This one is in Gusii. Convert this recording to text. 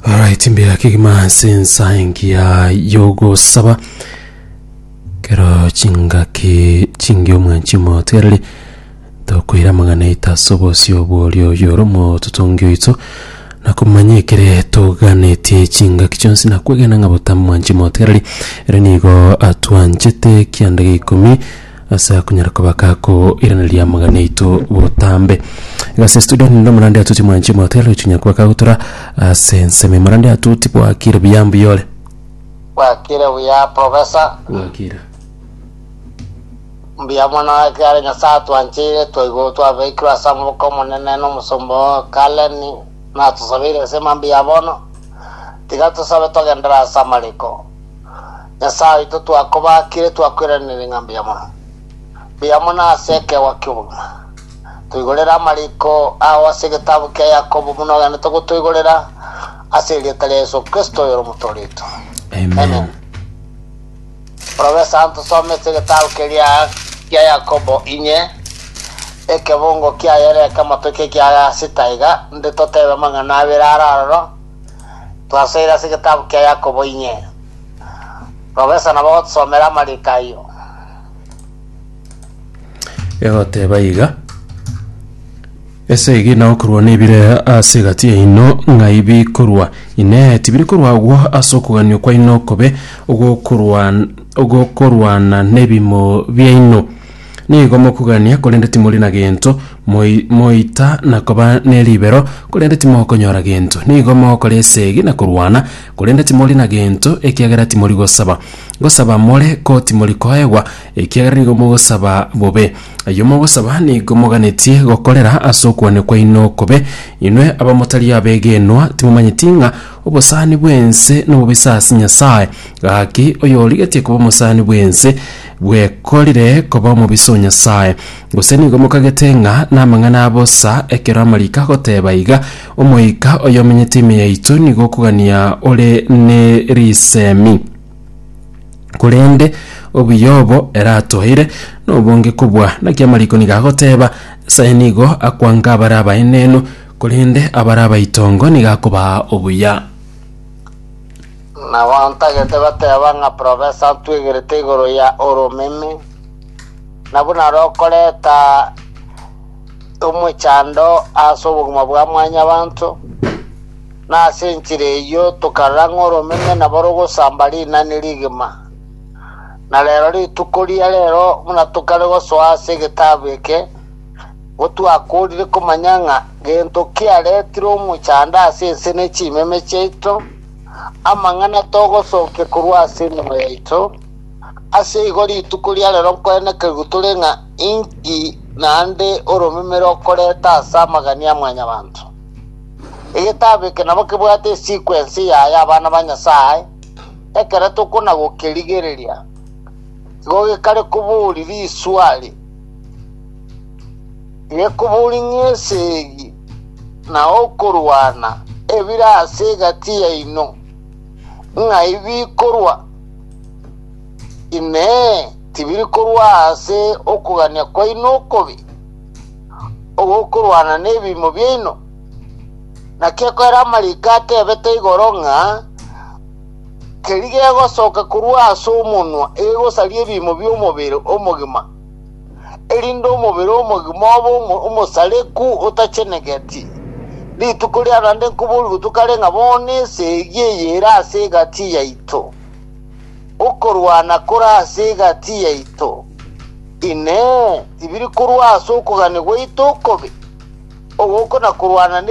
Alright, mbuya kegima ase ensa engiya yogosaba kero chingaki chingiya omwanchi motereri tokoira amang'ana aito ase obosio bworia oyo ore omototongi oito na komanya ekere toganetie chingaki chionsi na kwegena ng'a botambe mwanchi motereri ere nigo atwanchete kianda gia ikomi ase akonyara kobaka ako irana ria amagana aito botambe gase studio ninde omorande atuti mwanchi mwatera gochinya kwaka gotura ase ensemo emorande atuti bwakire buya mbuya ore bwakire buya profesa bwakire mbuya mono ekiara nyasaye atwanchire twaigwa twabeikirwe ase amaboko omonene n'omusomba oo kaleni natusabeire ase mambia bono tiga tosabe togendera ase amariko Nyasae oito twakobaakire twakweraneire ng'a mbuya mono, mbuya mono ase ekeegwa ki'obogima. Toigorere amariko ao ase egetabu kia Yakobo buna ogenete gotoigorera, ase erieta ria Yeso Kristo oyore Omotooria oito. Amen. Orobe esanto somete egetabu keria kia Yakobo inye, ekebungo kiayore ekemo toike ekiagasi taiga, nde totebe amang'ana abere are aroro, Twasoire ase egetabu kia Yakobo inye. Professor nabo ogotusomera amariko ayio. egoteba iga ese egina okorwa nebire ase egati yaino ng'ai bikorwa inee tibiri korwa agwo ase okoganio kwaino okobe ogokorwan- ogokorwana nebimo biaino Nigo mokogania, korende timori na gento, moi moita na koba ne ribero, korende timokonyora gento. Nigo mogokora esegi na korwana, korende timori na gento, ekiagera timori gosaba. Gosaba more, ko timori koegwa, ekiagera nigo mogosaba bobe. Ayio mogosaba nigo moganetie gokorera ase okwania kwaino okobe. Inwe abamotari abegenwa, timomanyeti ng'a obosani bw'ense nobobe ase Nyasae? Gaki, oyorigetie koba omosani bw'ense, bwekorire koba omobisa o Nyasae, gose nigo mokagete ng'a namang'ana a bosa, ekero amariko agoteeba iga, Omoika oyo omenyete ime yaito nigo okogania ore ne risemi. Korende obuya obo ere atoeire nobonge kobua, naki amariko nigo agoteeba, Nyasae nigo akwanka abare abaenenu, korende abare abaitongo nigo akobaa obuya. Na bantagete bateba ng'a profesa atwegerete igoro ya oromeme, na buna rokoreta omochando ase obogima bwa mwanyabanto, na ase enchera eyio tokarora ng'a oromeme nabo rogosamba rinani rigima. Na rero rituko ria rero buna tokare gosoa ase egetabu eke, gotwakorire komanya ng'a gento kiaretire omochando ase ense ne chimeme chiaito, amang'ana togosookia korwa ase emenwa yaito, ase igo rituko ria rero nkwenekerigwe tore ng'a inki naende oromemere okoreta ase amagani a mwanyabanto. Egetabu eke nabo kebwate esiko ense yaye abana ba Nyasae, ekero tokonagokerigereria, igo gekare koboria riswali. Nekoborinyie esegi na okorwana ebire ase egati yaino, ng'ai bikorwa? Inee! Tibiri korwa ase okogania kwaino okobe, ogokorwana nebiimo biaino? Naki ekero amariiko atebete igoro ng'a keria gegosoka korwa ase omonwa egosaria ebiimo bi'omobere omogima, erinde omobere omogima obe omo- omosareku otachenegeti. Rituko ria naende nkoboorigwe tokare ng'a bono ense eyio eyere ase egati yaito, okorwana kore ase egati yaito, Inee! Tibiri korwa ase okogania gwaito okobe? Ogoko na korwana ne